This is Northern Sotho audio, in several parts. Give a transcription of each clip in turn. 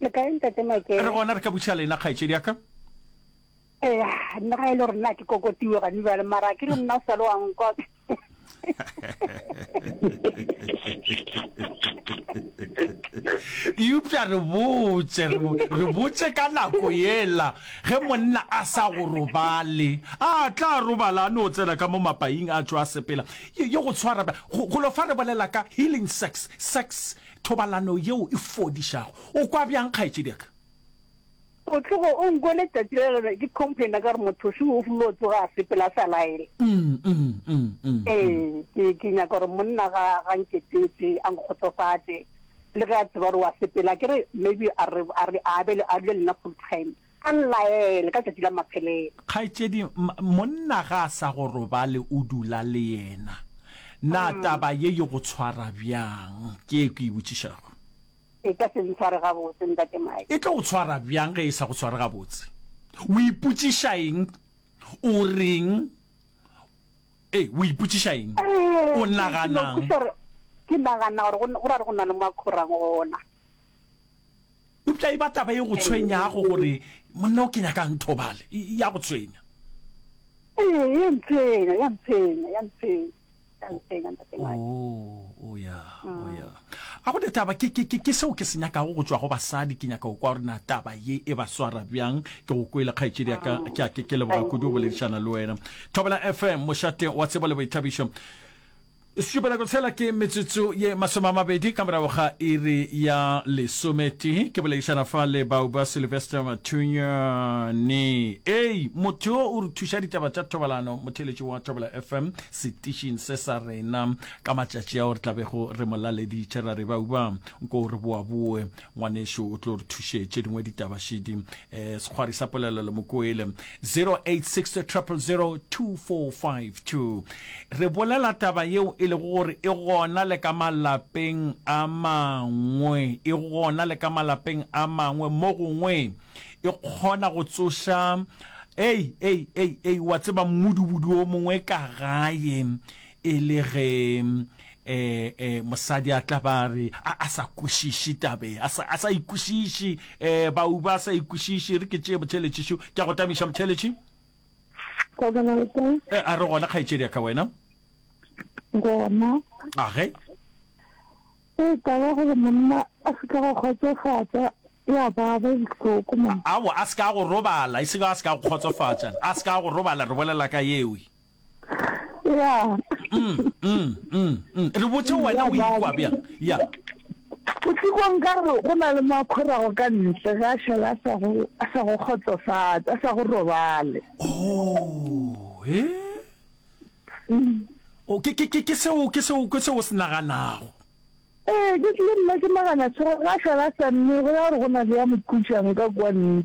Le kae ntate Makere? Re gona re ka buša lena kgaetšedi ya ka. Eh, nna ga e le rena ke kokotiwe gane bjale mara ke re nna o sa le wa nkwa. eupša re botse re botse ka nako yela ge monna a sa go robale a tla robala a no tsena ka mo mapaing a tšwa a sepela ye go tshwara go lo fa re bolela ka healing sex sex Thobalano yeo e fodišago. O kwa bjang kgaetšediaka? O tlogo o nkwele tšatši le lengwe ke complaina ka gore mothoši o flo tsoga a sepela a sa laele. Ee, ke nyaka gore monna ga ga nketetse a nkgotsofatše le ge a tseba gore wa sepela. Ke re maybe a re a be a dule le nna full time. A nlaele ka tšatši la maphelelo. Kgaetšedi, monna ga a sa go robale, o dula le yena. Na taba ye e go tshwara bjang? Ke ye ke e botšišago. E ka se ntshware gabotse, Ntate Mike. E tlo go tshwara bjang ge e sa go tshware gabotse? O ipotšiša eng? O reng? Ee, o ipotšiša eng? O nagana'ng? Ke nagana gore go ra re go na le mo a khorang gona. Eupša e ba taba e go tshwenyago gore, Monna o ke nyakang thobale? Ya go tshwenya? Ee, ya ntshwenya, ya ntshwenya, ya ntshwenya. Oh, ya, oh, ya. A go ne taba, ke, ke, ke, ke seo ke se nyakago go tšwa go basadi, ke nyaka go kwa gore na taba ye e ba swara bjang. Ke go kwele kgaetšedi ya ka, ke a ke ke leboga kudu go boledišana le wena. Thobela FM, mošate wa tsebo le boithabišo. Šupelako tshela ke metsotso ye masome a mabedi ka morago ga iri ya lesometee. Ke boledišana fa le bao ba Sylvester Mathunyane. Ei, motho yo o re thuša ditaba tša thobalano, motheletši wa Thobela FM, setišing se sa rena. Ka matšatši ao re tlabego re mo laleditše ra re bau ba, nko re boaboe. ngwanešu o tlo re thuše tše dingwe ditaba šidi um eh, sekgwari sa polelo le mokoele 0860002452 re bolela taba yeo e lego gore e gona le ka malapeng a mangwe e gona le ka malapeng a mangwe mo gongwe e kgona go tsoša ei ei ei ei wa tseba mmudubudu o mongwe ka gae e le ge e e mosadi a tla ba re a sa kwešiše tabe a sa a sa ikwešiše e ba u ba sa ikwešiše re ke tšee motšheletši šo ke go tamiša motšheletši e a re gona kgaetšedi ka wena gona a ge e ka ba gore monna a se ka go kgotsofatsa ya ba ba bohloko mo a a se ka go robala e se ka a se ka go kgotsofatsa a se ka go robala re bolela ka yewe ya mm, mm, mm, mm. re botse wena o ikwa bjang ya botikong ka gore go na le makgorago ka ntle ga šala a sa go- a sa go kgotsofatsa a sa go robale oh e o ke ke ke ke seo ke seo ke seo o se naganago ee ke tlile nna ke nagana tshwere ga šala a sa mme go ya gore go na le ya mokhutsang ka kwa ntle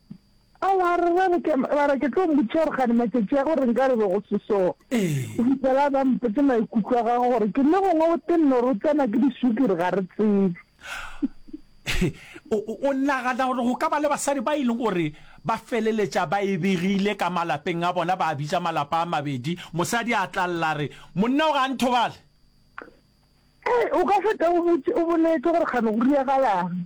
A wa re wa re ke wa re ke tlo mmotšiša gore gane matšatši a gore nka re be go se so. Ee. O fitlhela ba mpotse maikutlo a gagwe gore ke le gongwe o tenne gore o tsena ke disukiri ga re tsebe. O nagana gore go ka ba le basadi ba e leng gore ba feleletša ba e begile ka malapeng a bona ba bitša malapa a mabedi mosadi a tla lla re monna o ga a nthobale? Ee, o ka feta o boletse gore gane go diregalang.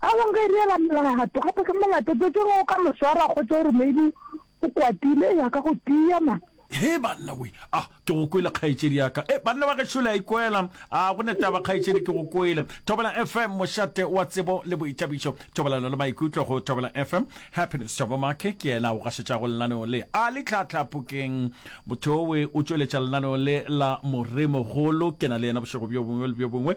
Aowa nka e reela molato, gape ke molato tse ke go ka mo swara kgotsa gore maybe o kwatile ya ka go tia man. He banna we a ke go kwele kgaetšedi ya ka e banna ba gešo le a ikwela a go ne taba kgaetšedi ke go kwele Thobela FM mošate wa tsebo le boithabišo thobelano le maikutlo go Thobela FM Happiness Thabo Make ke yena o gašetšago lenaneo le a le tlhatlha phokeng motho we o tšweletša lenaneo le la moremogolo ke na le yena bošego bjo bongwe le bjo bongwe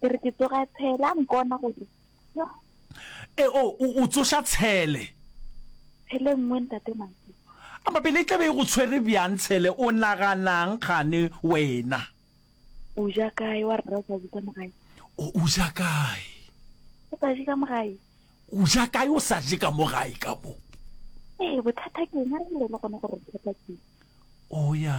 ke re ke tsoga tshele a nkona gore e o o tsoša tshele tshele nngwe ntate mantsi a mabele e tlabe e go tshwere bjang tshele o naganang gane wena o ja kae wa rra sa ka mogae o ja kae o sa je ka mogae o ja kae o sa je ka mogae ka mo ee bothata ke ena re le gone gore bothata ke o ya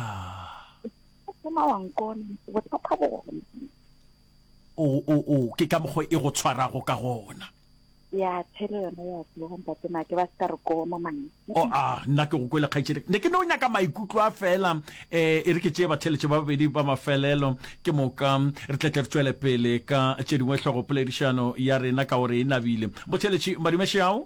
o ke ka mokgwa e go tshwarago ka gona ya tshele yone ya tlogontate make ba se ka re koma mane o oh, a nna ke go kwele kgaitsedi ne ke ne o nyaka maikutlo a fela um e re ke tšee batheletše ba babedi ba mafelelo ke moka re tletle re tswele pele ka tše dingwe tlhogopoledišano ya rena ka gore e nabile botheletši madumešeao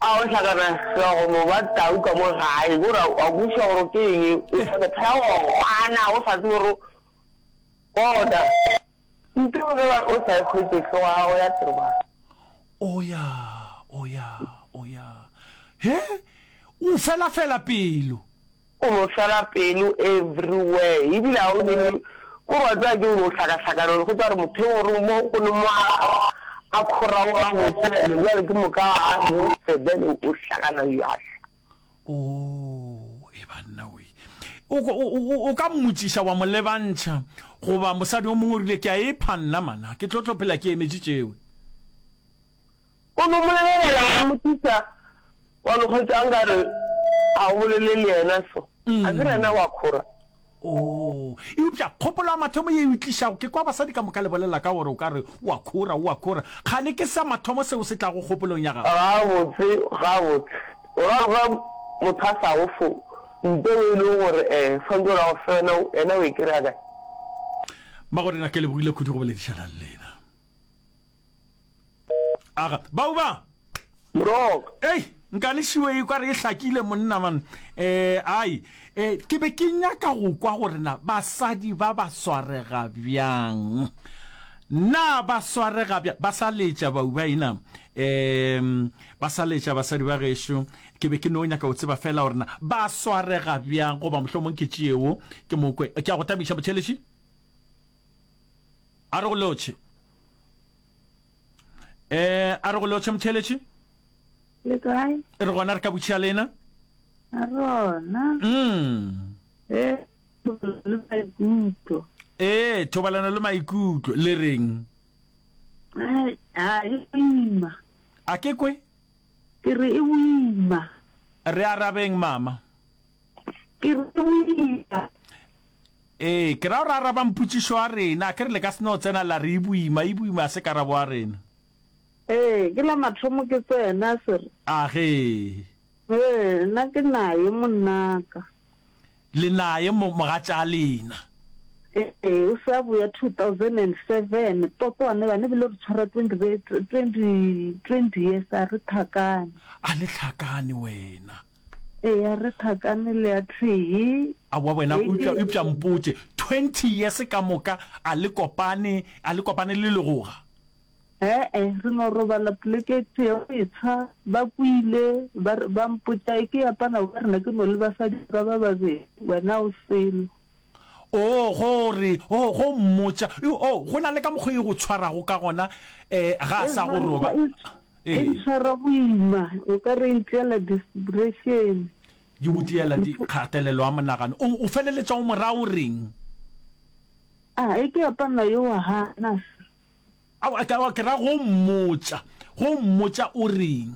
A o hlakana hlogo mo ba tau ka mo gae gore a o buša gore ke eng o tla go phela go gwana o sa tsebe gore bona nte o ba o sa khwetse hlogo ya gago ya tseba. Oya oya oya he o fela fela pelo. O no swela pelo everywhere ebile a o nene ko re wa tseba ke o no hlakahlakana go tswa re motheo gore mo go ne mo a kgoraoga go tshela le jwale ke moka a no sebele o hlakana ya hla. O e banna we o o ka mmutsiša wa mo lebantšha goba mosadi o mongwe o rile ke a e phanna mana ke tlo tlo phela ke emetše tšewe. O no mo lebelela wa mmotšiša, wa no hwetša a nka re ga o bolele le yena so, a ke re yena wa khora. Oo, eupša kgopolo ya mathomo ye e o tlišago, ke kwa basadi ka moka le bolela ka gore o ka re o a khora, o a khora. Kgane ke sa mathomo seo se tlago kgopolong ya gago. Gabotse, gabotse. O ra go ba motho a sa go fo mphe o e lego gore eh swantse o ra go fe yona, yena o e kry-a kae? Magorena, ke lebogile kudu go boledišana le lena. Aga, bau ba! Mrok! Ei, nkane šiwe e kware e hlakile monna man. Eh, ai, eh, ke be ke nyaka go kwa gore na basadi ba ba swarega bjang. Na ba swarega bjang? Ba sa letša bau ba ina. Eh, ba sa letša basadi ba gešo. Ke be ke no nyaka go tseba fela gore na ba swarega bjang goba mohlomong ke tšeo ke mokwe. Ke a go tabiša motšheleši. A re go lotšhe. Eh, a re go lotšhe motheletši. Le kae? E re gona re ka butšhia lena. A rona. Mm. Eh, le maikutlo. Eh, thobalano le maikutlo le reng? Eh, a e ima. A ke kwe? Ke re e ima. Re arabeng mama. Ke re e ima. Ee, ke ra gore a arabang putšišo a rena, a ke re le ka se no tsena la re e boima, e boima a se karabo a rena. Ee, ke la mathomo ke tsena, a se re. Agee. Ee, na ke naye monnaka. Le naye mo, mogatša lena. Ee, o se a boya 2007, Toto a ne ba ne bile re tshwara 20, 20, 20 years, a re tlhakane. A le tlhakane wena. Eya re thakane le ya thwii. Aowa wena eupša eupša mpotše twenty years ka moka a le kopane a le kopane le legoga. He-e re no robala poleke e tee go etsha ba kwile ba re ba mpotša e ke ya pana wa rena ke no le basadi ba ba babedi wena o selo. Oo, go re, oo, go mmotša, Yo, oo, go na le ka mokgwa e go tshwarago ka gona, e, ga a sa go roba. E ntshwara boima, o ka re e ntliela disteprešene. Di go tliela di, kgatelelo ya monagano. O, o feleletša o mo raya o reng? A, e ke apana yo wa gana se. Aowa, ke, aowa, ke ra go mmotša, go mmotša o reng?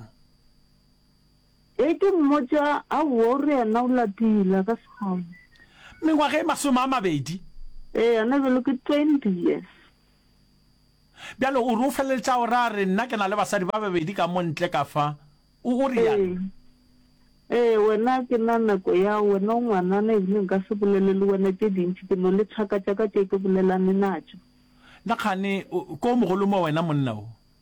Ge ke mmotša, Aowa, o reana o lapile, a ka se kgone. Mengwaga e masome a mabedi. Eana bjalo ke twenty years. Bjale o re o feleletša o ra re, Nna ke na le basadi ba babedi ka mo ntle ka fa. O, o reana? Ee. Ee, wena a ke na nako ya, wena o ngwanana ebile nka se bolele le wena tše dintši, ke no le thaka tša ka tše ke bolelane natšo. Na kgane ko mogolo mo wena monna o?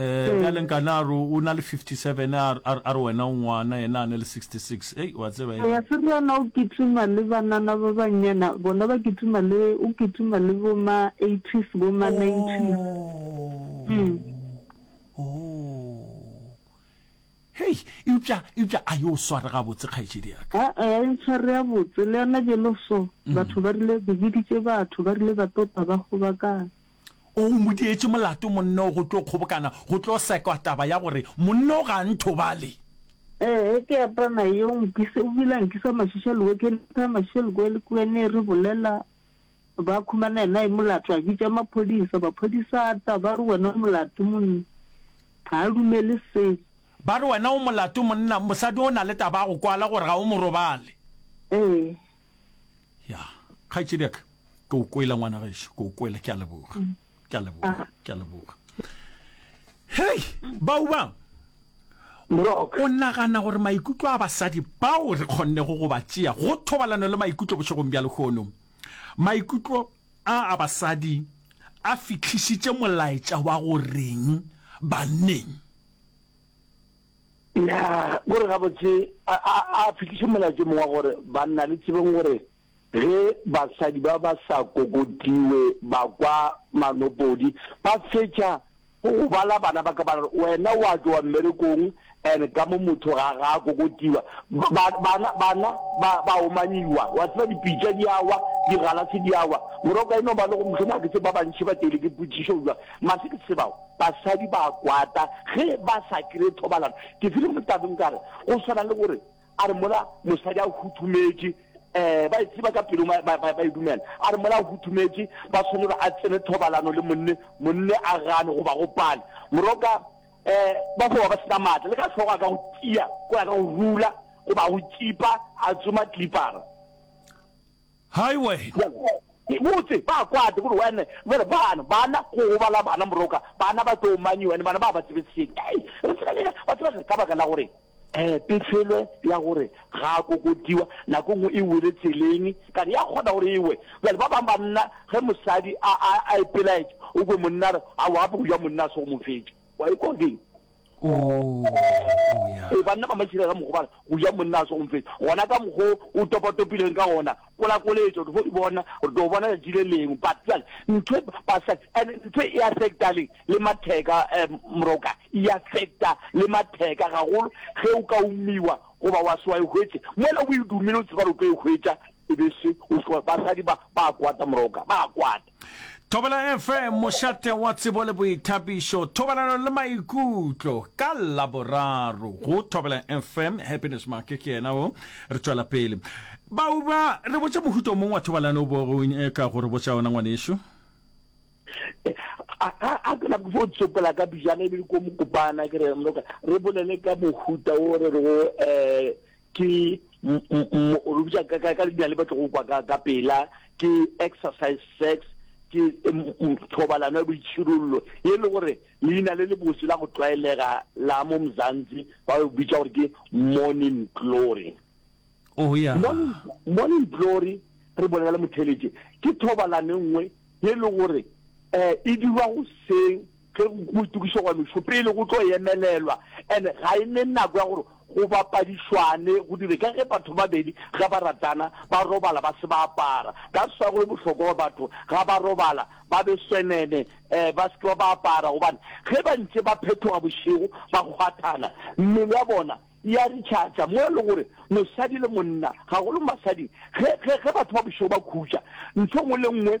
Ee, bjale nkane a re o na le 57 a re- a re- a re wena o ngwana yena a ne le 66 ei wa tseba e Eya, Seriyana o kitima le banana ba bannyana, bona ba kitima le, o kitima le bo ma 80s, bo ma 90s. Mm. Oh. Hei, eupša eupša a yo sware gabotse kgaetšedi ya ka. Aa, e ntshware ya botse, le yona bjelo so, batho ba rile, ke boditše batho, ba rile ba tota ba kgobakana. O mo dietše molato monna o go tlo kgobokana go tlo sekwa taba ya gore monna o ga a nthobale. Ee, ke apana yo nkise, o bile a nkisa mašiša lewekeng, a thaya mašiša lekoe le kuene, re bolela, ba khumana yena e molato, a bitša maphodisa, maphodisa a tla, ba re wena o molato monna, ga a dumele selo. Ba re wena o molato monna, mosadi o na le taba ya go kwala gore ga o mo robale. Ee. ya kgaitsediaka ke o kwela ngwana gešo ke o kwela ke a leboga mm. ke a leboga ah. ke a leboga hei bao ba o nagana gore maikutlo a basadi bao re kgonne go go ba tšea go thobalano le maikutlo bošegong bja lehono maikutlo a a basadi a fitlhisitše molaetša wa go reng banneng Ya, ko re gabotse a, a, a fihliše molaetšo mongwe wa gore, Banna, le tsebeng gore ge basadi ba ba sa kokotiwe ba kwa manopodi, ba fetša go go bala bana ba ka ba re, Wena wa tšowa mmerekong, and ka mo motho ga, ga a kokotiwa. Ba, ba, bana, bana ba, ba omanyiwa. Wa tseba, dipitša di a wa, digalase di a wa. Morwa o ka e no ba le gore, Mohlomongwe a ke tsebe ba bantši ba teilwe ke potšišo bjang, mara se ke se tsebago, Basadi ba a kwata ge ba sa kry-e thobalano. Ke file mo tabeng ka re go swana le gore a re mola mosadi a huthumetše, um ba e tseba ka pelong ba, ba, ba e dumela, a re mola a huthumetše ba swane gore a tsene thobalano le monne, monne a gane goba go pane. Moroka um ba fo ba ba sena maatla, le ka hlogo a ka go tia ko ya ka go rula goba a go tšipa a tsoma tlipara. Hai wena! Ke botse ba kwate gore wena jale bana bana go gobala bana moroka bana ba tlo manyi wena bana ba ba tsebe seng ei re tseba le ba tseba gore ka baka la gore eh pefelo ya gore ga a kokodiwa nako nngwe e wele tseleng ka re ya kgona gore ewe jale ba bang banna ge mosadi a a a ipelaetša o kwe monna re a wa go ja monna a se go mo fetša wa ikwa ding Ee, banna ba matšhirega mogobala go ja monna a se gomfetsa gona ka mokgo o topatopileng ka gona kolakoletša gore fo bona re tlo bona letši le lengwe but jale ntho basa and ntho e affecta le le matheka um moroka e affecta le matheka gagolo ge o ka umiwa goba wa se wa e hwetse mola o e dumile o tseba re tlo e hwetša e be se basadi ba ba kwata moroka ba kwata Thobela FM, mošate wa tsebo le boithabišo, thobalano le maikutlo ka laboraro go Thobela FM. Happiness Make ke yena o re tšwela pele. Bauba re botša mohuto mong wa thobalano bo go eh, ka gore botša ona ngwanešu. a ke nako fo tsopela ka bijana ebile ko mokopana ke re re bolele ka mohuta o re re go um eh, ke re bitsa ka ka dina le batlo go kwa ka ka pela ke exercise sex ke thobalano ya boitshirollo e le gore leina le le botse la go tlwaelega la mo mzanzi ba go bitsa gore ke morning glory oh ya morning glory re bona le motheletse ke thobalano e nngwe e le gore eh e dirwa go seng Ge go itokišwa go ya mešopele go tlo emelelwa and ga e ne nako ya gore go bapadišwane go dire ka ge batho ba babedi ge ba ratana ba robala ba se ba apara. That's why go le bohlokwa gore batho ga ba robala ba be senene um ba se ke ba ba apara gobane ge ba ntše ba phethoga bošego ba kgwathana mmele ya bona e a recharger mo e le gore mosadi le monna gagolo mo basading ge ge ge batho ba bošego ba khutša ntho e nngwe le nngwe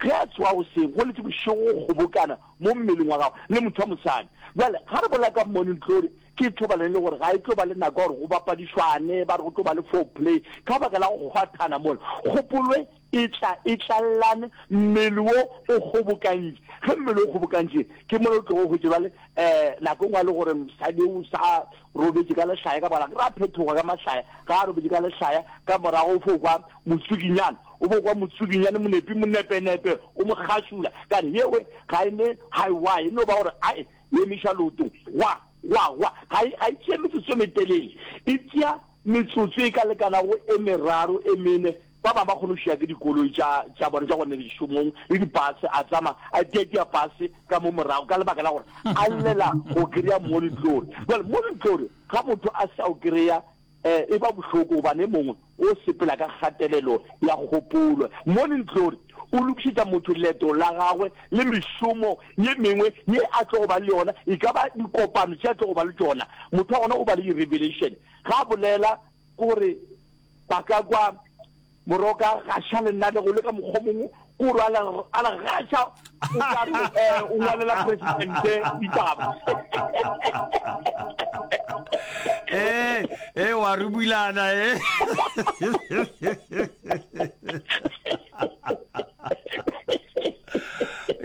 Ge a tsoga goseng, go letše bošego go kgobokana mo mmeleng wa gagwe le motho wa mosadi. Bjale, ga re bolela ka morning glory, ke thobalano e le gore ga e tlo ba le nako ya gore go bapadišwane, ba re go tlo ba le foreplay, ka baka la go kgwathana mola. Kgopolwe, Etla, etlallane, mmele wo o kgobokantše. Ge mmele o kgobokantše, ke mola o tlogo hwetše, bjale, um nako e nngwe a le gore mosadi o sa. robetše ka lehlaya ka morago, ra phethoga ka mahlaya, ga a robetše ka lehlaya ka morago, o fo kwa motsukinyane, o fo kwa motsukinyane, monepi, monepenepe, o mo kgašula, ka re, Yewe, ga e ne, ga e wa, e no ba gore a e emiša leotong, gwa, gwa, gwa, ga e, ga e tšee metsotso e metelele, e tšea. Metsotso e ka lekanago e meraro e mene, ba bangwe ba kgona go šia ke dikoloi tša, tša bona tša go nne dišomong le dipase, a tsama a tiatia pase ka mo morago ka lebaka la gore a llela go kry-a molitlori. Jwale molitlori ga motho a sa o kry-a eh, e ba bohloko gobane e mongwe o sepela ka kgatelelo ya kgopolo. Molitlori o lokišetša motho leeto la gagwe le mešomo ye mengwe ye a tlogo ba le yona, e ka ba dikopano tše a tlogo ba le tšona. Motho wa gona o ba le di-revelation, ga a bolela ke gore ba ka kwa moroka gaša le nna le go le ka mokgwa mongwe, ke gore a la a la gaša o ka re um o ngwalela presidente ditaba. ee ee wa rubulana e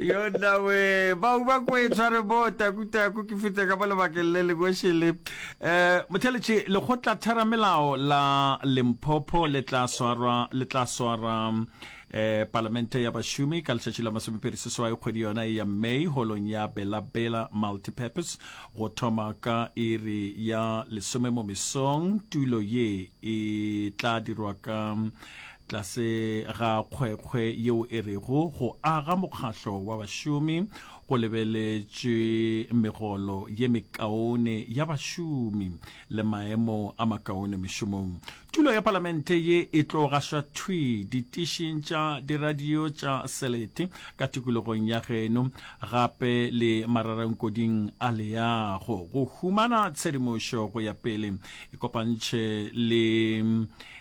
yo nawe bao ba kwetswa re bo takutaku ke fete ka mo lebakeng le lekošele um eh, motheletše lekgotla theramelao la lemphopho le tla swara le tla swara um eh, palamente ya bašomi ka letšatši la masomepedi seswai kgwedi yona e ya may holong ya bela bela multipurpose go thoma ka iri ya lesome mo mesong tulo ye e tla dirwa ka Tlase ga kgwekgwe yeo e rego go aga mokgahlo wa bašomi go lebeletšwe megolo ye mekaone ya bašomi le maemo a makaone mešomong. Tulo ya Palamente ye e tlo gašwa thwi ditišing tša diradio tša selete ka tikologong ya geno gape le mararankuding a leago go humana tshedimošo go ya pele e kopantšhe le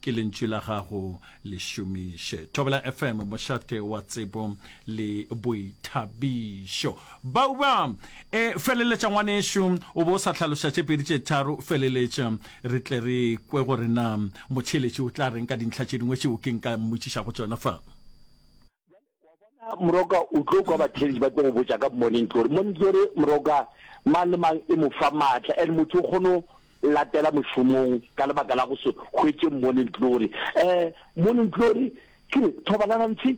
ke lentšu la gago le šomiše thobela fm mošate wa tsebo le boithabišo bauba e feleletša ngwanešu o bo o sa tlhaloša tše pedi tše tharo feleletša re tle re kwe gore na motšheletši o tla reng ka dintlha tše dingwe tšeo ke nka mmotšišago tšona fa Moroka o tlo kwa bathelisi ba tlo go botša ka Morning Glory. Morning Glory moroka mang le mang e mo fa maatla and motho o kgone latela mošomong ka lebaka la go se hwetše Morning Glory. Eh Morning Glory ke re thobalana ntse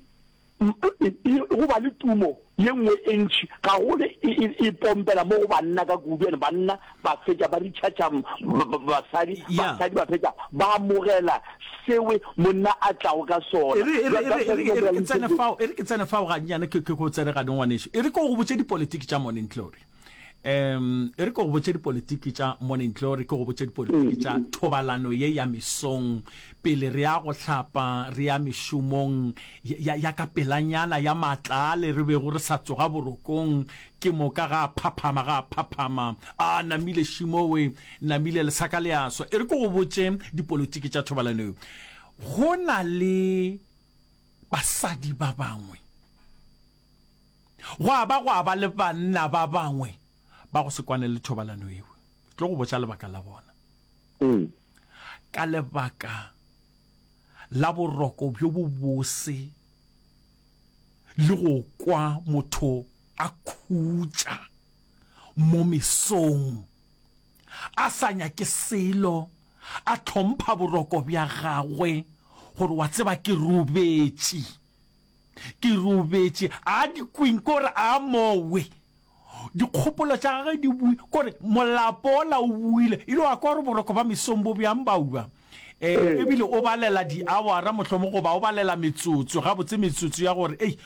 go ba le tumo ye nngwe e ntši gagolo e pompela mo go banna ka kudu and banna ba fetša ba ritšhatša basadi, basadi ba fetša ba amogela sewe monna a tlago ka sona. E re ke tsene fao gannyane ke go tsene gane ngwaneso, e re ko go botse dipolitiki tša mone ntle gore um e re ke go botse dipolitiki tša mone ntle gore ke go botse dipolitiki tša mm. thobalano ye ya mesong pele re ya go hlapa re ya mešomong ya ka pelanyana ya matlale re bego re sa tsoga borokong Ke moka ga a phaphama, ga a phaphama. A namile šimowe, namile lesaka le a swa. E re ke go botše dipolotiki tša thobalano eo. Go na le basadi ba bangwe, gwa ba gwa ba le banna ba bangwe ba go se kwane le thobalano eo. Ke tlo go botša lebaka la bona. Ee. Ka lebaka la boroko bjo bobose le go kwa motho a khutša mo mesong, a sa nyake selo, a tlhompha boroko bja gagwe gore wa tseba ke robetše, ke robetše, a di kweng ke gore a mowe. Dikgopolo tša gage di bui kore molapo ola o buile e le wa kwa gore boroko ba mesong bo bjang ba ua. E, ebile o balela diawara mohlomong goba o balela metsotso, gabotse metsotso ya gore, ei,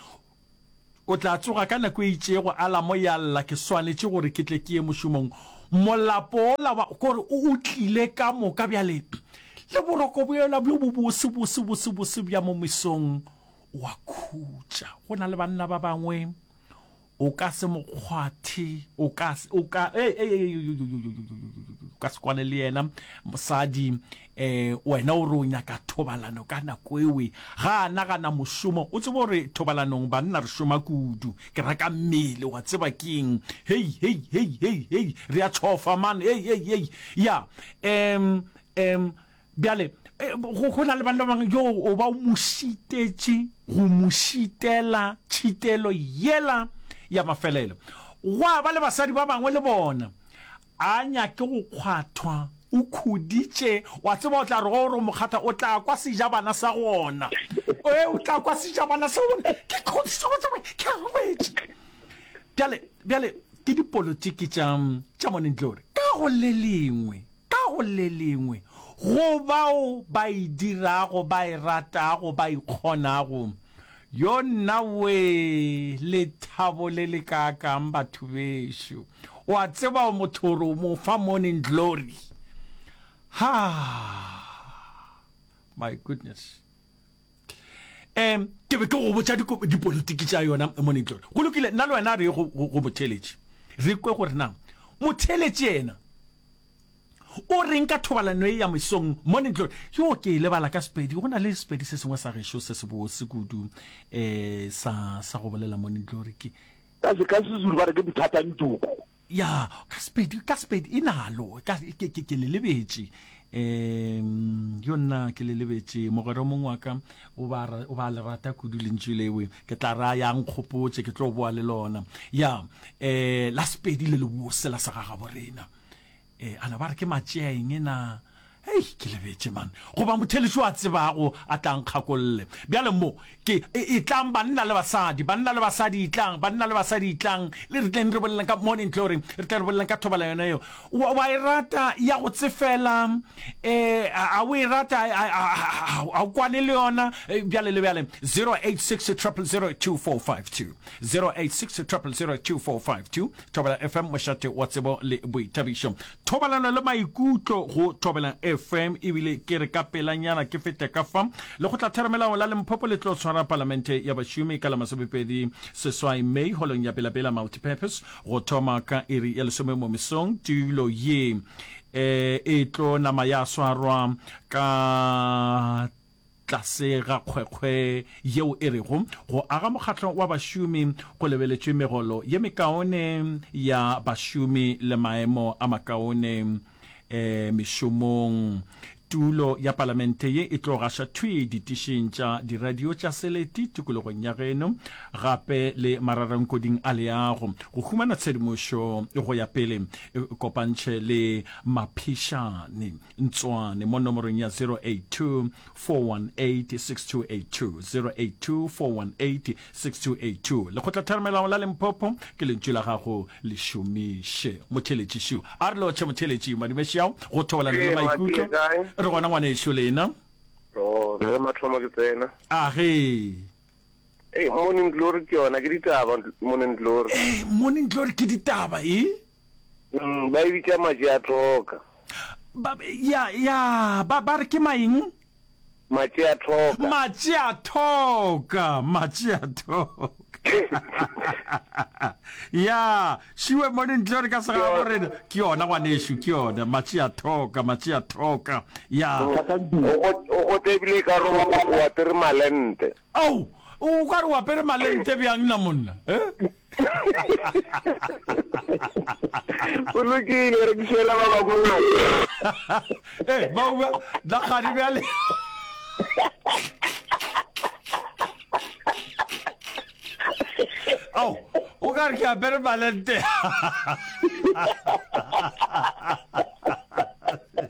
o tla tsoga ka nako e itšego, alamo ya lla, ke swanetše gore ke tle ke ye mošomong. Molapo ola wa kore o o tlile ka moka bjale, le boroko bjola bjo bo bose bose bose bose bja mo mesong o a khutša. Go na le banna ba bangwe O ka se mo kgwathe, o ka, o ka, e, e, e, o ka se kwane le yena. Mosadi, um wena o re o nyaka thobalano ka nako ewe, ga a nagana mošomo. O tsebe gore thobalanong banna re šoma kudu, ke raka mmele, wa tseba keng, hei, hei, hei, hei, hei, re a tšhofa man, hei, hei, hei, ya, um, um, Bjale go na le banna bang yo o ba o mo šitetše go mo šitela tšhitelo yela ya mafelelo. Gwa ba le basadi ba bangwe le bona a nyake go kgwathwa o khuditše wa tseba o tla re go re mokgatha o tla kwa sejabana sa gona e o tla kwa sejabana sa gona ke khodiso go tsaba ke robetše bjale bjale ke dipolotiki tša tša moneng tlore ka go le lengwe Ka go le lengwe, go bao ba e dirago, ba e ratago, ba e kgonago. Yo nna wee, lethabo le lekaakang, batho bešo! O a tseba o motho gore o mo fa morning glory. Ha! My goodness! um ke be ke go botša dipolitiki tša yona monitlore go lokile nna le wena re go motheletši re kwe gore na motheletši ena o reng ka thobalano e ya mesong monitlore yo ke e lebala ka sepedi go na le sepedi se sengwe sa gešo se se bose kudu um sa sa go bolela monitlore ke ka sezulu ba re ke bothatantoko Ya, ka Sepedi, ka Sepedi, e nalo, ka, ke, ke, ke le lebetše. Um, yo nna, ke le lebetše. Mogwera o mongwe wa ka, o ba, o ba le rata kudu lentšu lewe. Ke tla ra ya nkgopotše, ke tlo boa le lona. Ya, um, la Sepedi le lebose la segagaborena. Ee, a na ba re ke matšea eng na? Hei, ke lebetše man. Goba motheletšo a tsebago a tla nkgakolle. Bjale mo, ke, e, etlang banna le basadi, banna le basadi etlang, banna le basadi etlang, le re tleng re boleleng ka mone ntle gore re tle re boleleng ka thobala yona yeo. Wa, wa e rata ya go tsefela, eh, a o e rata, a o kwane le yona, eh, bjale le bjale, 086 0002452, 086 0002452, Thobela FM, mošate wa tsebo le boithabišo. Thobalano le maikutlo go Thobela FM ebile ke re ka pelanyana ke fete ka fa lekgotlatheramelao la Limpopo le tlo tshwara palamente ya bašomi ka la masomepedi seswai May holong ya Bela Bela Multipurpose go thoma ka iri ya lesome mo mesong. Tulo ye eh, e tlo nama ya swarwa ka Tlase ga kgwekgwe yeo e rego go aga mokgatlo wa bašomi go lebeletšwe megolo ye mekaone ya bašomi le maemo a makaone mešomong. Tulo ya Palamente ye e tlo gaša thwi ditišing tša diradio tša seleti tikologong ya geno gape le mararankoding a leago. Go humana tshedimošo go ya pele, kopantšhe le maphišane. Ntswane mo nomorong ya 0824186282 Lekgotlatharamelao la Limpopo ke lentšu la gago le šomiše motheletši šu a re lotšhe motheletši madimešiao go thobalana le maikutlo re gona ngwanešu lena re mathomo ke tsena a ge Hey, morning glory ke yona ke ditaba morning glory Hey, morning glory ke ditaba e Mm, ba e bitša matši a thoka. Ba, ya, ya, ba, ba re ke maeng? Matši a thoka. Matši a thoka, matši a thoka. ya, šiwe mo dintle re ka sega go rena. Ke yona gwanešu, ke yona. Matši a thoka, matši a thoka. Ya. O go, o go tebile ka roba, o apere malente. Ao, o ka re o apere malente bjang na monna? Eh? o lokile re dišela ba babona e eh, ba ba da gadi bjale ao o ka re ke apere malente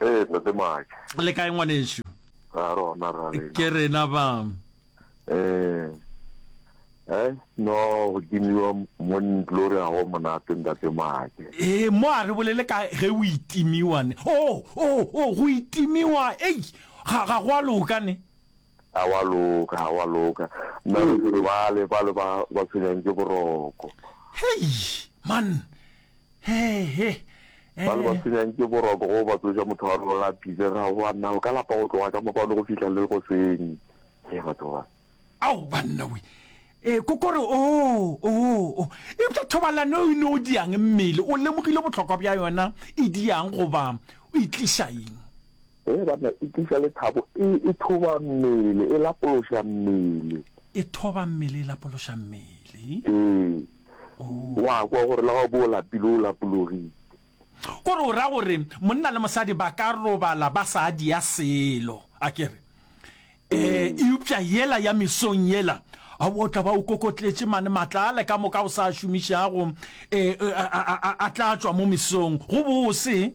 Ee, Ntate Maake. Le kae ngwanešu? Ra rona ra lena. Ke rena ba. Eh. Eh, no go timiwa mo ntlore a go monate Ntate Maake. Eh, mo a re bolele ka ge o itimiwa ne. Oh, oh, oh, go itimiwa. Ei, ga ga go a loka ne. Ga wa loka, ga wa loka. Nna le tsebe bale, bale ba, ba tshwenyang ke boroko. Hei, man! He, he, Bale ba eh, tshwenyang ke boroko go ba tsoša motho wa rona a phile, ga wa nna o ka lapa go tloga ka mopano go fihla le goseng. He, batho ba. ao, banna we! Eh, ko kore, oo, oo, oo. Eupša thobalano eo e no diang mmele? O lemogile bohlokwa bja yona? E diang goba o e tliša eng? Hee banna, e tliša lethabo, e, e thoba mmele, e lapološa mmele. E thoba mmele, e lapološa mmele. Ee. Oh. Wa kwa gore la bo o lapile, o lapologile. Kore o ra gore monna le mosadi ba ka robala ba sa dia selo, a ke re. Eh, eupša yela ya mesong yela, a o tla ba o kokotletše mane matla ale ka moka o sa a šomišago, eh, a, a, a, a tla tšwa mo mesong, go bose.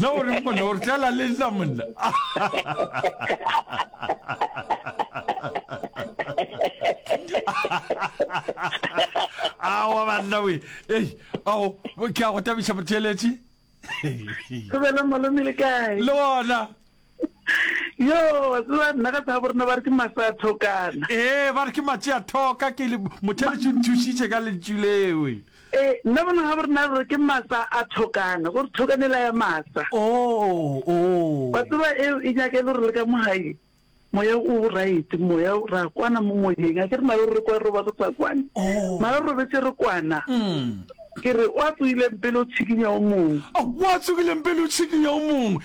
Na o reng monna o re tlela le nna monna? Awa banna we. Ei, ao, ke a go tabiša motheeletši. Go bela malome le kae? Le ona. yo wa tseba nna ka tsabo rena ba re ke masa thokana ee ba re ke matše a thoka ke motheletše nthušitše ka lentšu lewe ee nna bona ga borena re ke masa a thokana gore thokanela ya masa o oh, o oh. wa tseba eo e nyaka e le gore le ka mogae moya o right moya ra kwana mo moyeng a ke re mare re kwa re roba re sa kwane oh. mara re robetse re kwana mm. ke re wa tsogileng pele o tshikinya o mongwe wa tsogileng pele o tshikinya o mongwe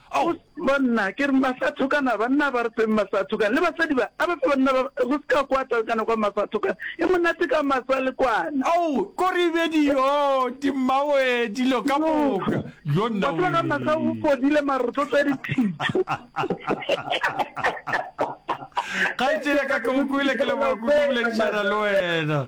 Go se banna, ke re masathokana, banna ba re feng masathokana, le basadi ba, a ba fe banna ba, re se ka kwa talkana kwa masathokana, e monate ka masa le kwana. Ao, ko re bedi yo, di mmawe dilo ka moka, yo nna Batho ba ka masa go wee. fodile mara re tlo tswa dithitho. Kgaetšedi ya ka ke go kwele ke leboga kudu boledišana le wena.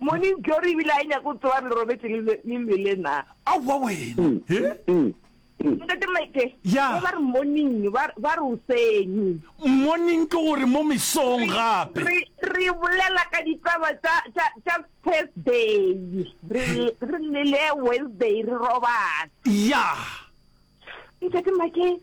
Morning Glory ebile a e nyako tsoa re robetse le le le lwele na. Aowa wena. Mm. He? Mm. Mm. Ntate Mike. Ya. Ba re morning ba ba re usenyi. Morning ke gore mo mesong gape. Re re bolela ka ditaba tsa tsa tsa Thursday. Re re le le Wednesday re robala. Ya. Ntate Mike.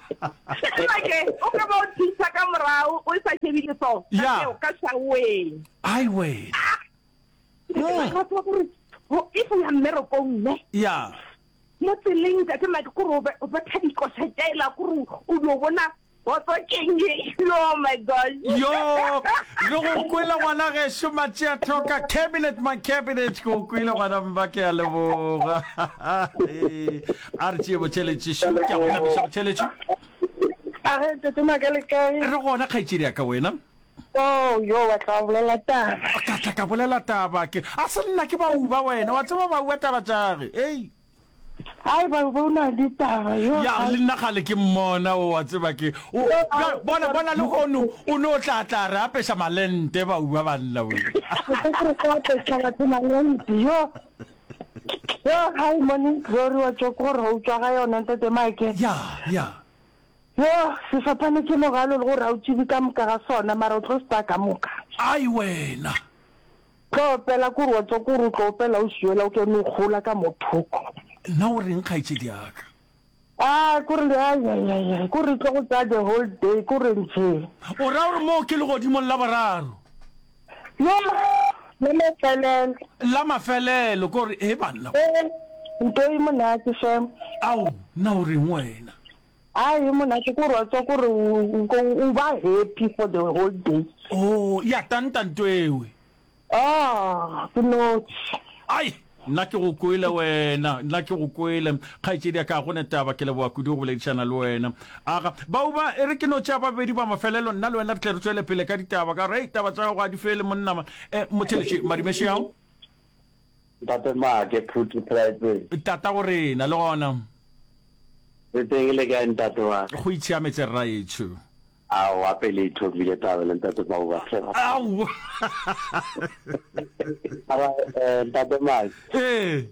Sebake, o ka ba o thusa ka morago o sa šebi leso ka Ya. seo ka šaoeng. Ai we. Marato gore ho- if o ya mmerekong ne Ya. mo tseleng tate make kore o be- o betha dikoša tšaela kore o dio bona botso keng e oh my gosh Yo, re go kwele ngwana gešo matšea tlhoka cabinet my cabinet ke go kwele ngwana mma ke a leboga Ee. A re tšee botšheletšešo, ke a go napiša botšheletšo. A re tete maka le kae? Re gona kgaetšedi ya ka, wena? Oh, yo wa tla bolela taba. Ka tla ka bolela taba ke. A se nna ke ba uba wena, wa tseba ba uba taba tšage, ei. Hai ba uba una di taba yo. Ya le nna ga le ke mmona o wa tseba ke. O bona bona le hono o no tla tla re apesha malente ba uba banna wena. Ke re sa apesha batho malente yo. Yoh hi morning glory wa tšoko gore ga utswa ga yona ntate make. Ya ya. Yoh sefaphane ke mogalo le gore ga o tšibi ka moka ga sona mara o tlo se tsaya ka moka. Ai wena. Tlo opela kore wa tšoko gore o tlo opela o šuela o ke no gola ka mo thoko. Nna o reng kgaetšedi yaka. Ah, kore le ay ay ay ay, kore tlo go tsaya the whole day, kore nje. O ra gore moo ke legodimong la boraro. Yo, la mafelelo. La mafelelo, kore he banna. Eh, nto e monate shem. Ao, na o reng wena? Ay, e monate kore wa tswa kore u u u ba happy for the whole day. Oh, ya tanta nto ewe. Aah ke notši. Ai! Nna ke go kwele wena, nna ke go kwele. Kgaetšedi ya ka, ga go ne taba, ke leboga kudu go boledišana le wena. Aga, Bauba, e re ke no tšea ba babedi ba mafelelo, nna le wena re tle re tšwele pele ka ditaba, ka gore, hei, taba tša gago ga di fele, monna ma. Eh, Motheletši, Madimeši ao? Ntate Maake, Phuti, Phelaetseng? Tata go rena, le gona? Re teng, le kae ntate wa ka? Go itshiametse, rraetsho. Aowa, pele e thomile taba le ntate Bauba fela. Aowa. Ara eh ntate Mai. Eh.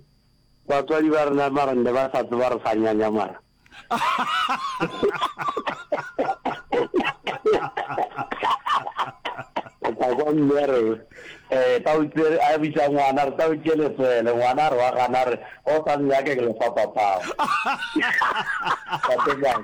Batswadi ba rena mara ne ba sa tseba re sa nyanya mara. Ka kwa mme re eh ta utsere a bitsa ngwana re ta utse le tswele ngwana re wa gana re o sa nnyake ke le fa papao. Ntate Mai.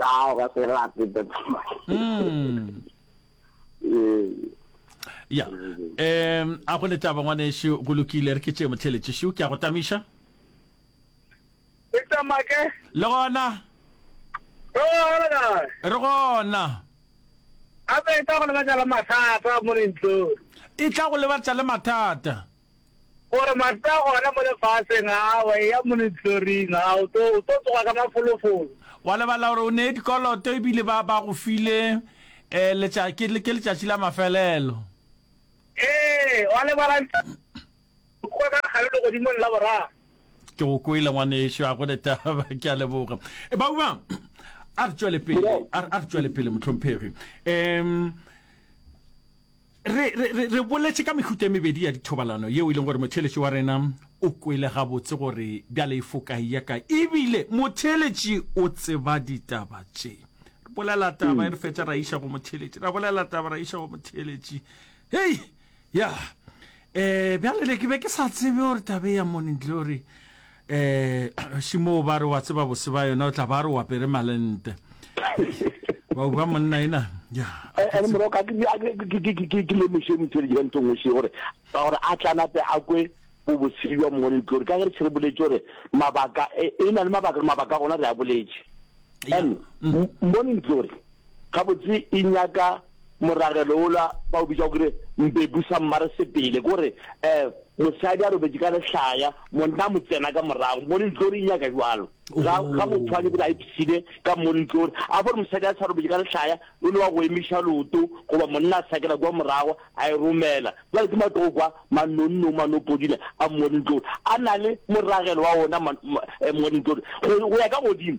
Ao ga se rate Mm. ya um a go letaba ngwanešu go lokile re ke tšee motheletšešo ke a go tamiša e tamake le gona re gona gape e tla go lebatša le mathata mo dintlong e tla go lebatša le mathata Gore mahlo a gona mo lefaseng a wa eya mo lehloring, a o tlo, o tlo tsoga ka mafolofolo. Wa lebala gore o nee dikoloto e bile ba, ba go file eh, letša, ke, ke letšatši la mafelelo. Ee, wa lebala ntho kua ka gare legodimong la boraro. Ke go kwele ngwanešu, a go ne taba, ke a leboga. E ba uma, a re tšwele pele, a re, a re tšwele pele, mohlomphegi. Em. Re, re, re, re boletše ka mehuta e mebedi ya dithobalano yeo e leng gore motheeletši wa rena o kwele gabotse gore bjale e fo kae ya kae. Ebile motheeletši o tseba ditaba tše. Re bolela taba e re fetša ra iša go motheeletši, ra bolela taba ra iša go motheeletši. Hei! Ya. Eh, bjale le ke be ke sa tsebe gore tabe ya Morning Glory um šimo o ba re wa tseba bose ba yona o tla ba re o apere malente wa uba monna ena ene morago ka ke lemoše motšweletši ka ntho nngwe še gore ka gore a tlanape a kwe bo bosedi bja mongwe le tlore ka ge re tšhere boletse gore mabaka e, e na le mabaka mabaka gona re a boletse and mm. morning glory gabotse e nyaka Moragelo wola ba o bitša gore mbebu sa mmare sepele, ko re um mosadi a robetše ka lehlaya, monna a mo tsena ka morago mo lentlo, re nyaka jwalo. Ga, ga motho a lebile a ipsile ka mo lentlo, re a gore mosadi a sa robetše ka lehlaya, o ne wa go emiša loto, goba monna a sakela kwa morago a e romela. Jwale ke matoo kwa manonnong, manopodile a mo lentlo, a na le moragelo wa ona mo lentlo, go ya ka godimo.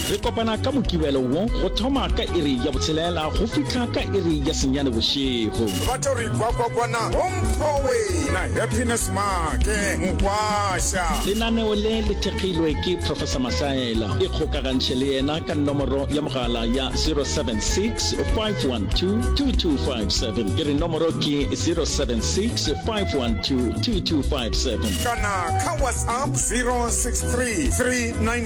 Re kopana ka Mokibelo wo go thoma ka iri ya botshelela go fihla ka iri ya senyane bošego. Batho re ikwa kwa kwana Hompho wena Happiness Make Mokwasha. Lenaneo le le thekgilwe ke Professor Mahlaela. Ikgokagantšhe le yena ka nomoro ya mogala ya 076 512 2257. Ke re nomoro ke 076 512 2257. Kana ka WhatsApp 063 399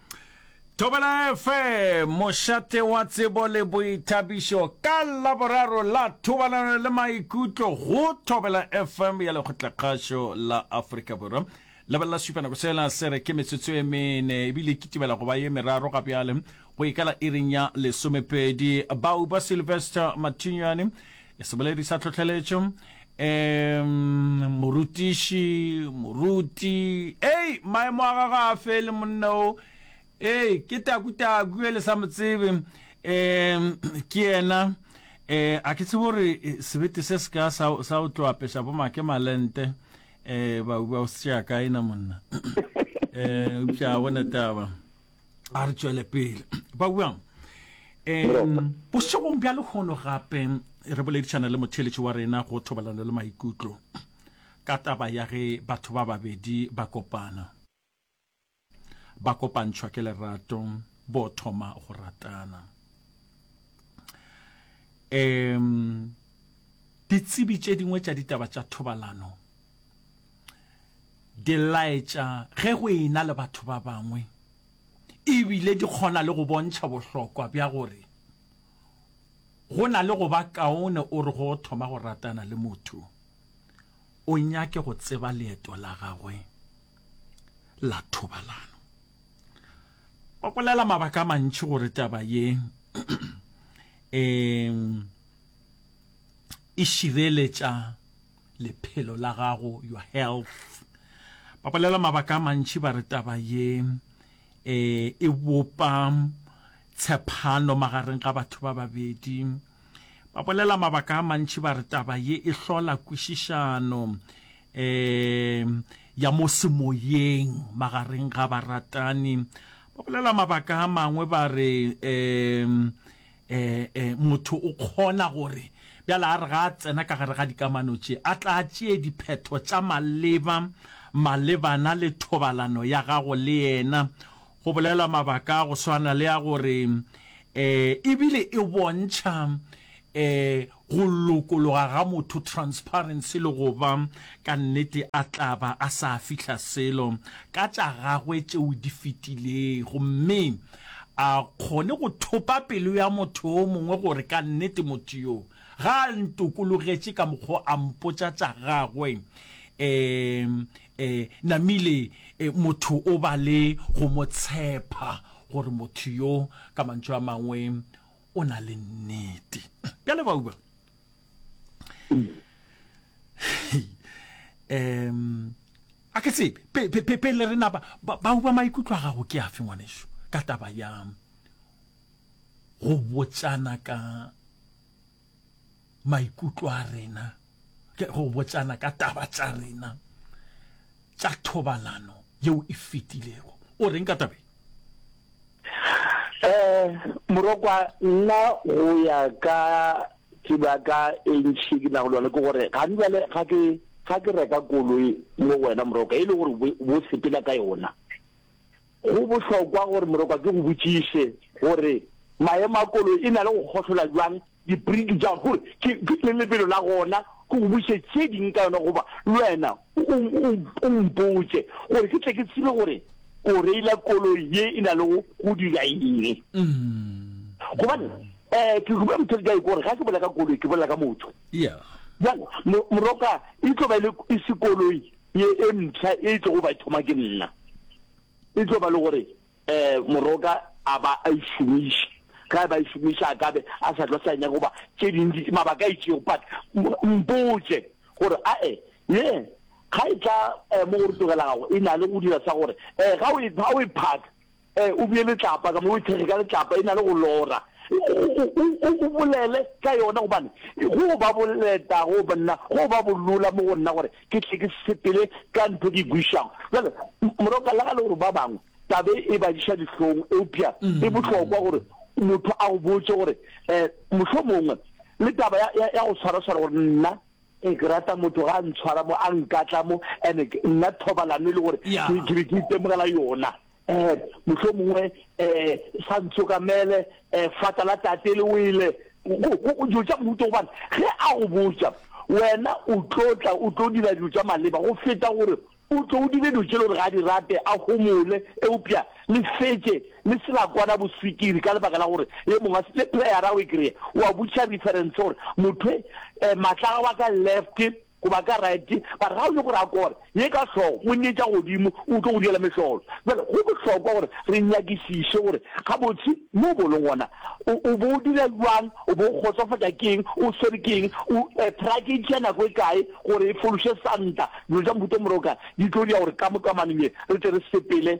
Thobela FM, mošate wa tsebo le boithabišo ka laboraro la thobalano le maikutlo go Thobela FM ya lekgotlakgašo la Afrika Borwa. Lebelela supa nako sela se re ke metsotso e mene ebile ke tibela go ba ye meraro ga bjale go ikala iring ya lesomepedi. Bauba Sylvester Mathinyane seboledi sa tlhotlheletšo um morutiši moruti ei maemo a gago a fele monna o ee ke takutaku e le sa mo tsebe um ke yena um a ke tsebo gore eh, sebete se se ka sa o tlo apesa bo make malente um ba o setsea kaena monna um eupša a gona taba a re tšwele pele ba buang um bošegong bja lehono gape re boledišana le motheletši wa rena go thobalano le maikutlo ka taba ya ge batho ba babedi ba kopana ba kopantšhwa ke lerato bo thoma go ratana um ditsebi tše dingwe tša ditaba tša thobalano di laetša ge go ena le batho ba bangwe ebile di kgona le go bontšha bohlokwa bja gore go na le go ba kaone o re go thoma go ratana le motho o nyake go tseba leeto la gagwe la thobalano ba bolela mabaka a mantši gore taba ye um e šireletša lephelo la gago your health ba bolela mabaka a mantši ba re taba ye e e bopa tshepano magareng ga batho ba babedi ba bolela mabaka a mantši ba re taba ye e hlola kwešišano um ya mo semoyeng magareng ga baratani ba bolela mabaka a mangwe ba re um e, e, motho o kgona gore bjala a re ga a tsena ka gare ga dikamano tše a tla tšee diphetho tša maleba malebana le thobalano ya gago le yena go bolelwa mabaka a go swana le a gore um ebile e bontšha um Go lokologa ga motho, transparency, le go ba ka nnete a tla ba a sa fihla selo ka tša gagwe tšeo di fetilego mme a kgone go thopa pelo ya motho yo mongwe gore ka nnete motho yo ga a ntokologetše ka mokgwa a mpotša tša gagwe. Um um Namile um motho o ba le go mo tshepa gore motho yo ka mantšu a mangwe o na le nnete bjale bauba um a ke tsebe pele re napa bauba maikutlo a gago ke afe ngwaneso ka taba ya go botsana ka maikutlo a rena ke go botsana ka taba tša rena tša thobalano yeo e fetilego o reng ka tabeng um morokwa nna go ya ka tseba ka e ntšhi ke nago le yone ke gore ga di bale ga ke ga ke reka koloi mo wena morokwa e le gore bo sepela ka yona Go bohlokwa gore morokwa ke go botšiše gore maemo a koloi e na le go gohlola bjang dipriki tša gago, gore ke ke lebelo la gona, ke go botšiše tše ding ka yona goba le wena o o o mpotše gore ke tle ke tsebe gore o reila koloi ye e na le go go dira eng. Gobane um ke rube mothodi ka gore ga ke bolela ka koloi ke bolela ka motho. Bjale mo morokwa e tlo ba e le e se koloi ye e mpsha e tlogo ba thoma ke nna e tlo ba le gore um moroka a ba a išomiša ga e ba e šomiša a kabe a sa tlo sa nyaka goba tše dintši mabaka a itšego but mpotse gore ae ye ga e tla um mo gore tlogela gago e na le go dira sa gore um ga o e phaka Ee, o bee letlapa ka mo, o e thekge ka letlapa, e na le go lora. O, o, o bolele ka yona, gobane go ba boleta go nna, go ba bolola mo go nna gore ke tle ke sepele ka ntho e ke e buišago. Bjale, morwa, ka lega le gore ba bangwe tabe e ba diša dihlong, eupša e bohlokwa gore motho a go botše gore, um mohlomongwe le taba ya, ya, ya go tshwaraswara gore nna, ee, ke rata motho ga a ntshwara mo, a nkatla mo, ene nna thobalano e le gore ke be ke itemogela yona. eh, mohlomongwe eh, sa ntsokamele eh, fata la tate le wele dilo tša mohuto gobane ge a go botsa wena o tlo tla o tlo dira dilo tša maleba go feta gore o tlo o dire dilo tše le gore ga di rate a gomole eupša le fetse le sela kwana boswikiri ka lebaka la gore ye mongwe le playera o e kry-e wa butšha reference gore motho um eh, maatlaga wa ka left Go ba ka rite, ba rao le go ra kore, ye ka hlogo, Monnye tša godimo o tlo go diela mehlolo. Bjale, go bohlokwa gore re nyakišiše gore gabotse mo bo leng gona, o, o bo o dira bjang, o bo o kgotsofatša ke eng, o swere ke eng, o, e, prayer ke e tšea nako e kae gore e fološe Santa, dilo tša mohuta o morokana, di tlo dira gore ka mo kamanong ye re tle re sepele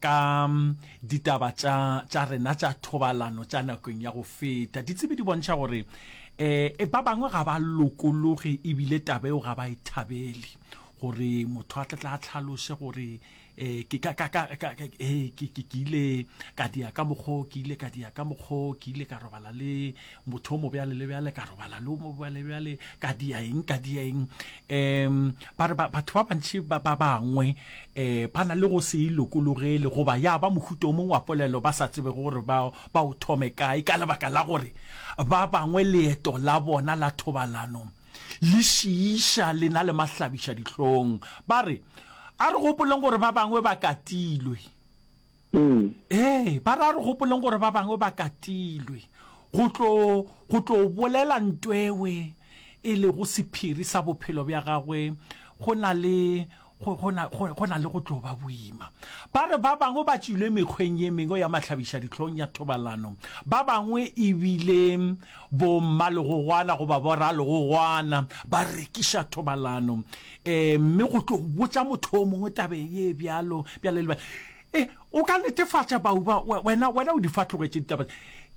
ka ditaba tša tša rena tša thobalano tša nakong ya go feta ditsebi di bontšha gore um ba bangwe ga ba lokologe ebile taba eo ga ba e thabele gore motho a tlatla a tlhalose gore um ke ka ka ka ke ile ka dia ka mokgoo ke ile ka dia ka mokgoo ke ile ka robala le motho o mo bjale le bjale ka robala le o mo bjale bjale ka dia eng ka dia eng um ba re batho ba bantši ba ba bangwe um ba na le go se e lokologele goba ya ba mohuta o mongwe wa polelo ba sa tsebe gore ba ba o thome kae ka lebaka la gore ba bangwe leeto la bona la thobalano le šiiša le na le mahlabiša dihlong ba re a re gopoleng gore ba bangwe ba katilwe Ee. Ee, ba re a re gopoleng gore ba bangwe ba katilwe go tlo go tlo bolela ntwewe e lego sephiri sa bophelo bja gagwe go na le go go na go go na le go tlo ba boima. Ba re ba bangwe ba tšwile mekgweng ye mengwe ya mahlabišadihlong ya thobalano, ba bangwe e bile bommalegogwana goba boralegogwana ba rekiša thobalano um mme go tlo botša motho o mongwe tabe ye bjalo bjale le e o ka netefatša bauba wena wena o di fa tlogetše ditaba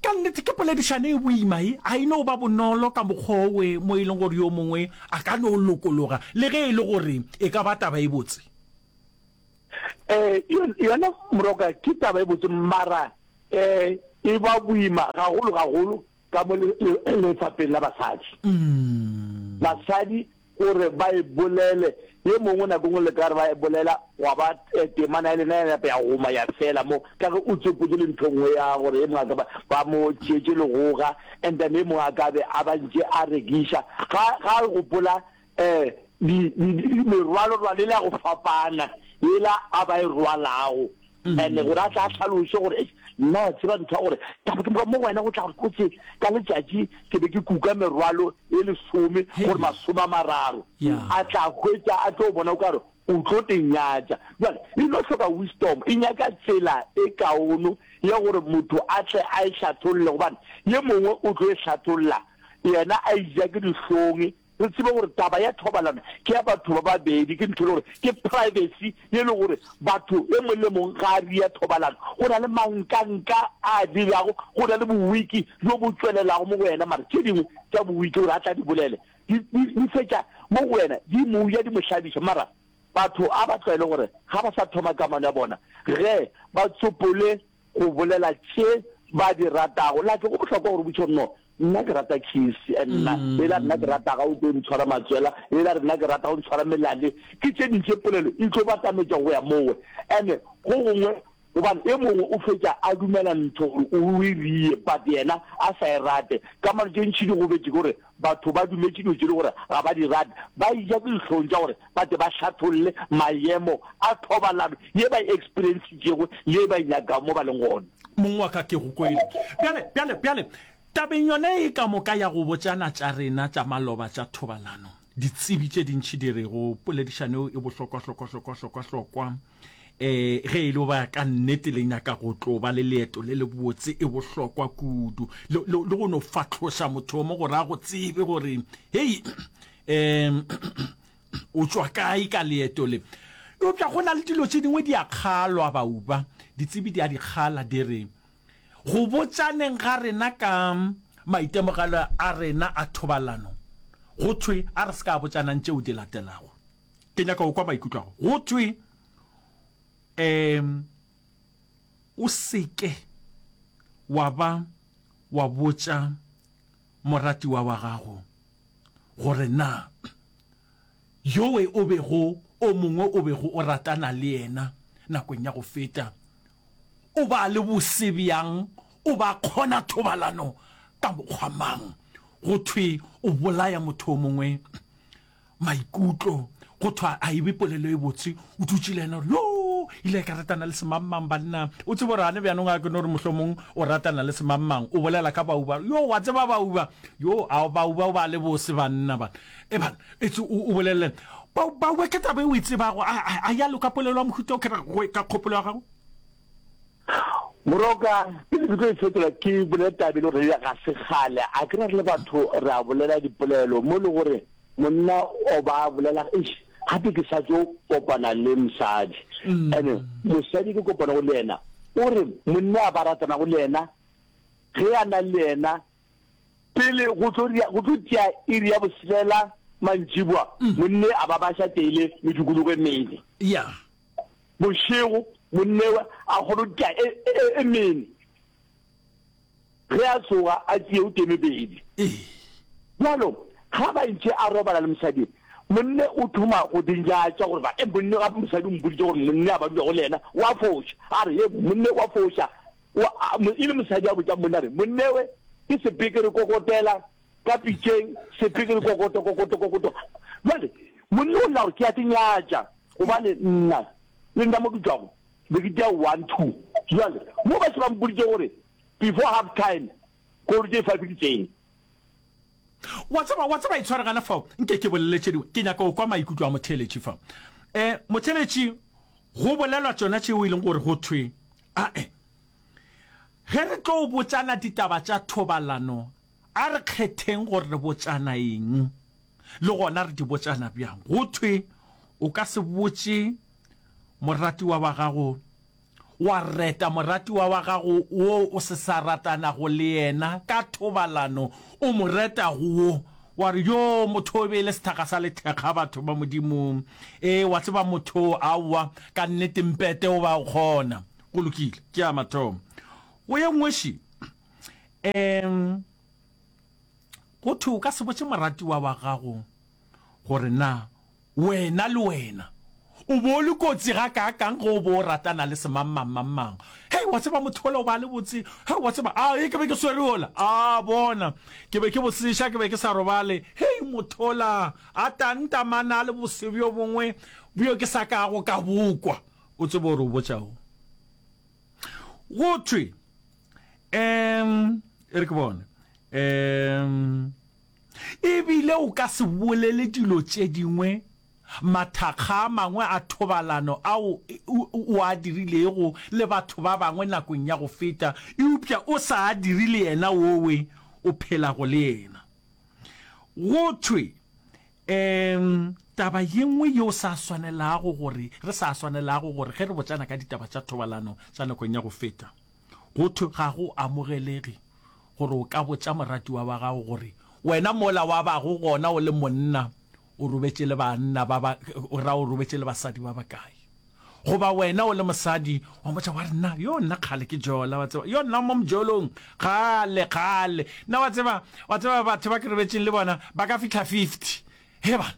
ka nnete ke poledišane e boima e a e no ba bonolo ka mokgowe mo e leng gore yo mongwe a ka no lokologa le ge e le gore e ka ba taba e botse um yona moroka ke taba e botse mara um e ba boima gagolo gagolo ka mo lefapheng la basadi. Basadi gore ba e bolele, ye mongwe nako ngwe le ka re ba e bolela, gwa ba temana ya lena ya napa ya goma ya fela mo, ka ge o tsopotse le ntho nngwe ya gore ye mongwe a ka ba mo tšeetše legoga, and then ye mongwe a ka be a ba ntše a rekiša, ga a gopola Ee, di, di, di, di merwalo rwale la go fapana yela a ba e rwalago mm-hmm. ene gore a tla tlhaloše gore nna tseba ntho ya gore taba ke mo go wena go tla gore kotse ka letšatši ke be ke kuka merwalo e lesome gore masome a mararo a tla hwetsa a tlo bona o kare o tlo tenyatsa jale e no tlhoka wisdom e nyaka tsela e kaono ya gore motho a tle a e hlatholle gobane ye mongwe o tlo e hlatholla yena a ija ke dihlonge Re tsebe gore taba ya thobalano ke ya batho ba babedi, ke ntho e le gore ke privacy ye le gore batho e mong le mong ga a ria thobalano. Go na le mankanka a a dirago, go na le bowiki bjo bo tšwelelago mo go yena, mara tše dingwe tša bowiki gore a tla di bolele di, di, di fetša mo go yena, di mo ja, di mo hlabiša. Mara batho a ba tlwaele gore ga ba sa thoma kamano ya bona ge ba tsopole go bolela tše ba di ratago la ke go bohlokwa gore botšho nno nna ke rata kisi and nna mm. e la nna ke rata ga o tlo ntshwara matswela e la rena ke rata go ntshwara melale ke tše dintše polelo e tlo batametša go ya mowe and go gongwe gobane e mongwe o fetša a dumela ntho gore o e rie but yena a sa e rate ka mano tše ntšhidi go betse kore Batho ba dumetše dilo tše e le gore ga ba di rate, ba eja ke dihlong tša gore ba tle ba hlatholle mayemo a thobalano ye ba e experiencitšego le ye ba e nyakago mo ba leng gona. Mong wa ka, ke go kwele. Bjale, bjale, bjale, tabeng yona ye ka moka ya go botšana tša rena tša maloba tša thobalano, ditsebi tše dintši di re go poledišano yeo e bohlokwa-hlokwa-hlokwa-hlokwa-hlokwa, um ge e le ba ka nnete le nyaka go tlo ba le leeto le le botse e bohlokwa kudu le go no fatlhoša mothomo gore a go tsebe gore hei um o tswa kae ka leeto le eupša go na le dilo tše dingwe di a kgalwa bauba ditsebi di a di kgala di re go botšaneng ga rena ka maitemogelo a rena a thobalano go thwe a re se ka botšanang tšeo di latelago ke nyaka go kwa maikutlo ago go tšwe um o seke wa ba wa botša moratiwa wa gago gore na yowe o bego o mongwe o bego o ratana le yena nakong ya go feta o ba le bose bjang o ba kgona thobalano ka mokgwa mang go thwe o bolaya motho o mongwe maikutlo go thwa a ebe polelo e botse o dutse le ena gore yo ile e ka ratana le semangmang banna o tsebo gore ane bjanong a ke no gore mohlomong o ratana le semangmang o bolela ka bauba yo wa tseba bauba yo a bauba o ba le bose banna bana e bana etse o bolelele bauba ke tabe o e tsebago a ya loka polelo ya mohuta o kere go e ka kgopolo ya gago Moroka, pele ke tlo e fetola ke bolele taba e le gore ga se kgale a kry-a re le batho re a bolela dipolelo mo e le gore monna o ba bolela eish gape ke sa tlo kopana le mosadi mm. and mosadi ke kopana go le yena o re monna a ba ratana go le yena ge a na le yena pele go tlo tia iri ya boselela mantšibwa mm. monne a ba ba sa teile medukologo e mene bošego monnewe a kgorotša e, e, e, e mene ge a tsoga a tšee o temebedi bjalo ga ba ntše a robala le mosadi monne o thoma go dinjatša gore ba e monne ga mosadi o mpoditse gore monne a ba dulago le yena wa foša a re e monne wa foša e le mosadi a botša monne a re monnewe ke sepekere kokotela Ka pitšeng, sepeke le kokoto, kokoto, kokoto. Bjale, monna o lla gore ke ya ke nyatša, gobane nna, le nna mo ke tšwago, be ke tea one, two. Bjale, mo ba se ba mpoditše gore, before half time, k'ore tše five di tsene. Wa tseba, wa tseba, itshware gana fao, nke ke bolele tše dingwe. Ke nyaka go kwa maikutlo a motheeletši fa. E, motheeletši, go bolelwa tšona tšeo e leng gore go thwe, a e, ge re tlo botšana ditaba tša thobalano, A re kgetheng gore re botšana eng, le gona re di botšana bjang. Go thwe o ka se botše moratiwa wa gago, wa reta moratiwa wa gago wo o se sa ratanago le yena ka thobalano, o mo reta go wo, wa re, Yoo, motho o be e le sethakga sa lethekga, batho ba Modimo. Ee, wa tseba, motho oo, aowa, ka nnete, mpete o ba o kgona. Go lokile, ke a mathomo. Go ye nngwe, še. Ee, go thwe o ka se botše moratiwa wa gago gore na wena le wena o bo le kotsi ga kaakang ge o bo o ratana le semangmangmangmang. Hei, wa tseba motho ola o ba le botse, hei, wa tseba, a e ke be ke swere ola, a bona, ke be ke boseša, ke be ke sa robale, hei, motho ola a tantamana a le bose bjo bongwe bjo ke sa kago ka bokwa. O tsebe gore o botša'ng? Go thwe um e re ke bone um ebile o ka se bolele dilo tše dingwe mathakga a mangwe a thobalano ao o a dirilego le batho ba bangwe nakong ya go feta eupša o sa a dire le yena wowe o phelago le yena go thwe um taba ye nngwe yeo sa swanelago gore re sa swanelago gore ge re botsana ka ditaba tša thobalano tša nakong ya go feta go thwe ga go amogelege gore o ka botša moratiwa wa gago gore wena mola wa bago gona o le monna o robetše le banna ba ba ra o robetše le basadi ba bakae goba wena o le mosadi wa motša wa rena yo nna kgale ke jola wa tseba yo nna mo mojolong kgale kgale nna wa tseba wa tseba batho ba ke robetšeng le bona ba ka fitlha fifty he bana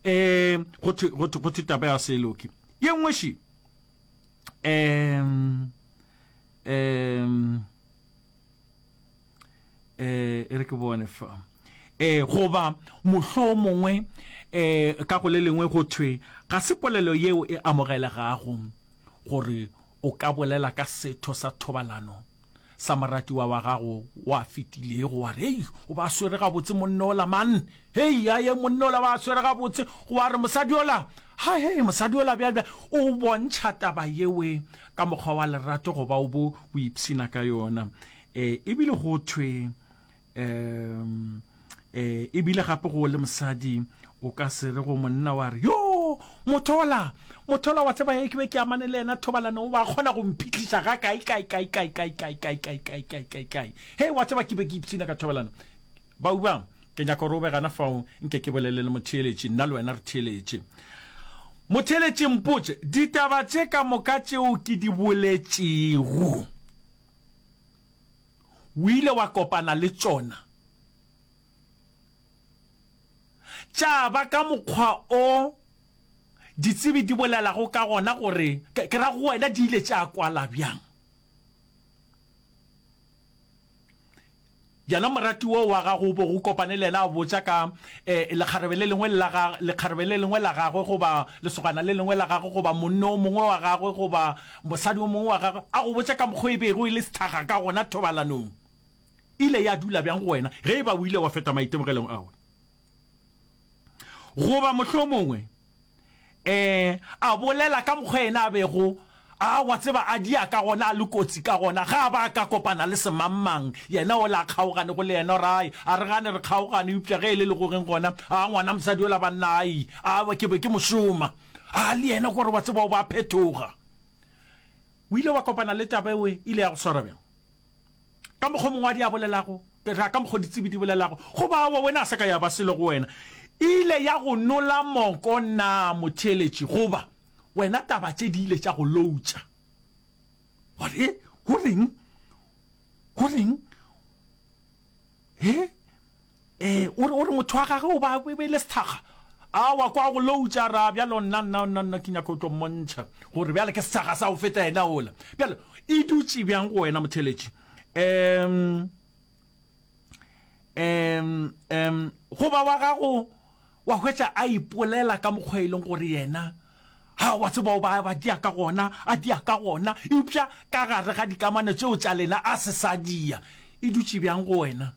um go thwe taba ya seloke ye nngwe šie um um eh e re ke bone fa eh goba mohlo mongwe eh ka go le lengwe go thwe ga se polelo yeo e amogelegago gore o ka bolela ka setho sa thobalano sa moratiwa wa gago wa fetilego wa re ei o ba swere gabotse monne ola man hei aye monne ola ba swere gabotse wa re mosadi ola ha hei mosadi ola bjale bja o bontšha taba yewe ka mokgwa wa lerato go ba o bo o ipshina ka yona um ebile go thwe um eh, e bile gape go le mosadi o ka se re go monna wa re yo mothola mothola wa tseba ye ke be ke amane le yena thobalano o ba kgona go mphitlhisa ga kae kae kae kae kae kae kae kae kae kae kae kae he wa tseba ke be ke ipshina ka thobalano bauba ke nyaka gore o be gana fao nke ke bolele le motheeletše nna le wena re theeletše motheeletše mpotse ditaba tše ka moka tšeo ke di boletšego O ile wa kopana le tšona, tša ba ka mokgwa o ditsebi di bolelago ka gona gore, ke ra go wena, di ile tša kwala bjang. Yena moratiwa wa gago o bego o kopane le yena a botša ka lekgarebe le lengwe la gagwe, lekgarebe le lengwe la gagwe goba lesogana le lengwe la gagwe goba monno o mongwe wa gagwe goba Mosadi o mongwe wa gagwe a go botše ka mokgwa e bego e le sehlaga ka gona thobalanong. E ile ya dula bjang go wena ge e ba o ile wa feta maitemogelong a ona? Goba mohlomongwe ee, a bolela ka mokgwa yena a bego a, wa tseba, a dia ka gona, a le kotsi ka gona ge a ba a ka kopana le semangmang. Yena o le a kgaoganego le yena, ra e, a re gane re kgaogane, eupša ge e le legogeng gona, a ngwana mosadi yola banna, ai, a, ke be ke mo šoma. a le yena gore wa tseba o ba phetoga o ile wa kopana le taba ewe ile ya go swara bjang ka mokgwa mongwe a di a bolelago ra ka mokgwa ditsebi di bolelago go ba wa wena a se ka ya ba selo go wena ile ya go nola moko na motheletši goba wena taba tše di ile tša go loutša gore go reng go reng he Ee, o re, o re motho wa gage o ba e be e le sethakga. Awa, kwa go loutša ra, bjalo nna, nna, nna, nna ke nyaka go tlo mmontšha gore bjale ke sethakga sa go feta yena ola. Bjale, e dutše bjang go wena, motheeletši? Um, um, um, goba wa gago wa hwetša a ipolela ka mokgwa e leng gore yena ha wa tseba o ba ba dia ka gona a dia ka gona eupša ka gare ga dikamano tšeo tša lena a se sa dia e dutše bjang go wena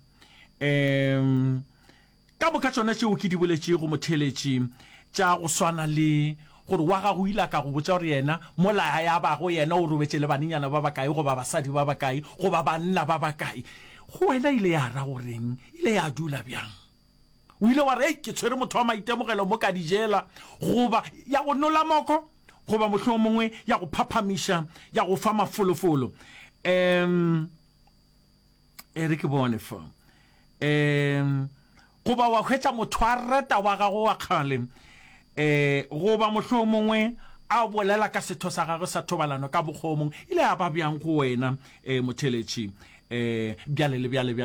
um ka moka tšona tšeo ke di boletšego motheletši tša go swana le gore wa gago ile ka go botša gore yena mola ya bago yena o robetše le banenyana ba bakae goba basadi ba bakae goba banna ba bakae go wena ile ya ra goreng ile ya dula bjang o ile wa re ke tshwere motho wa maitemogelo mo ka dijela goba ya go nola moko goba mohlho mongwe ya go phaphamiša ya go fa mafolofolo um e re ke bone fa um goba wa hwetša motho a reta wa gago wa kgale um goba mohloo mongwe a bolela ka setho sa gagwe sa thobalano ka bokgomong ile a ba bjang go wena um motheletši um bjale le bjale